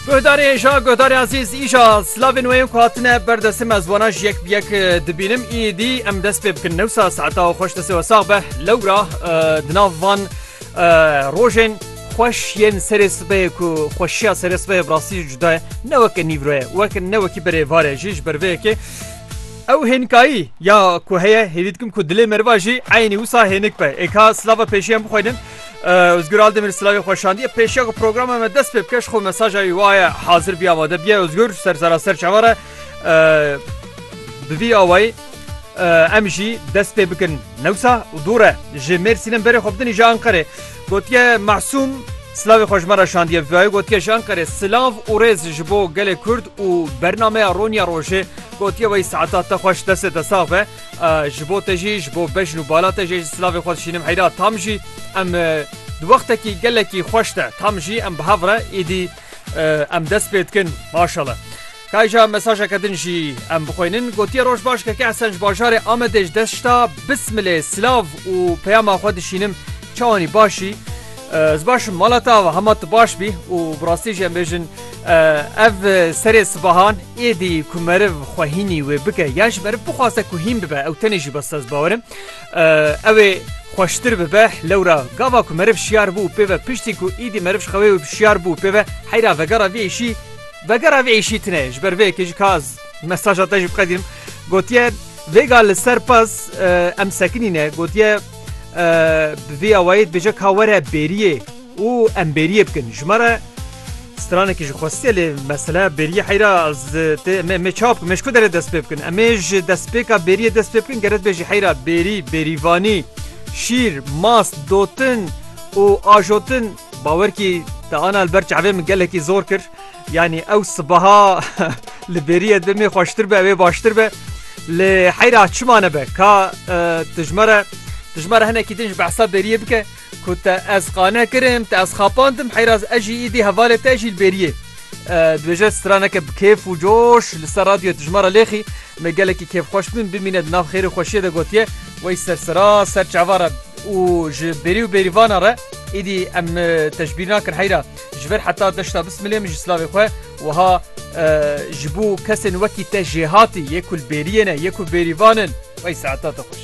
Guhdarê îşa guhdarê ezîz îşa slavên wê yên ku hatine ber destê me ez wana ji yek bi yek e, dibînim îdî em dest pê bikin newsa saeta û xweş destê we sax be lewra e, di nav van e, rojên xweş yên serê sibê ku xweşiya serê sibê bi rastî jî cuda ye ne weke nîvroye wek ne wekî berê vare jî ji ber vê yekê Ew hênkayî ya ku heye hêvî dikim ku dilê meriva jî eynî wisa hênik be. Êka slava pêşiyan bixwînin Özgür Aldemir Sılavê Xweşandiye pêşiya ku programa me dest pê bikeş xwe mesaja wî waye hazir biya vade biye Özgür ser zara ser çavare bi vî awayî em jî dest pê bikin newsa û dûre ji Mêrsînin berê xwe bidinî ji Anqerê gotiye Masûm Sılavê xweşmara şandiye vivayê gotiye ji Anqerê Sılav û rêz ji bo gelê Kurd û bernameya Ronya Rojê gotiye wayî saeta te xweş destê te sax be Ji bo te jî, ji bo bejn û bala te jî ez silavê xwe dişînim heyra tam jî em di wextekî gelekî xweş de tam jî em bi hev re êdî em dest pê dikin maşala. Kayca mesajeke din jî em bixwînin gotiye roj baş keke Hesen ji bajarê Amedê ji dest şita bismilê silav û peyama xwe dişînim çawanî başî. Ez baş im mala te ava hema tu baş bî û bi rastî jî em bêjin ev serê sibahan êdî ku meriv xwe hînî wê bike yan ji meriv bixwaze ku hîn bibe ew tenê jî bes ez bawer im ew ê xweştir bibe lewra gava ku meriv şiyar bû û pê ve piştî ku êdî meriv ji xewê wê şiyar bû pê ve heyra vegera vê êşî vegera vê êşî tine ji ber vê yekê jî ka ez mesaja te jî biqedînim gotiye vêga li ser pez em sekinîne gotiye Bi vî awayî dibêje ka were bêriyê û em bêriyê bikin. Ji me re stranekî ji xwestiye lê mesele bêriyê heyra me çap me ji ku derê dest pê bikin. Em ê ji destpêka bêriyê dest pê bikin geret bê jî heyra bêrî, bêrîvanî, şîr, mas, dotin û ajotin bawerkî te ana li ber çavê min gelekî zor kir. Yanî ew sibeha li bêrîye demê xweştir be wê baştir be lê heyra çima nebe ka tu ji me re tu ji me re hinekî din ji behsa bêrîyê bike ku te ez qane kirim te ez xapandim heyra ez jî îdî hevalê te jî li bêrîyê dibêje straneke bi kêf û coş li ser radyoyê tu ji me re lêxî me gelekî kêfxweş bin bimîne di nav xêr û xweşiyê de gotiye wey sersera ser çava re û ji bêrî û bêrîvana re îdî em te ji bîr nakin heyra Ji ber heta deşta bismilê min ji slavê xwe wiha ji bo kesên wekî te jêhatî yê ku li bêriyê ne yê ku bêrîvan in wey saeta te xweş.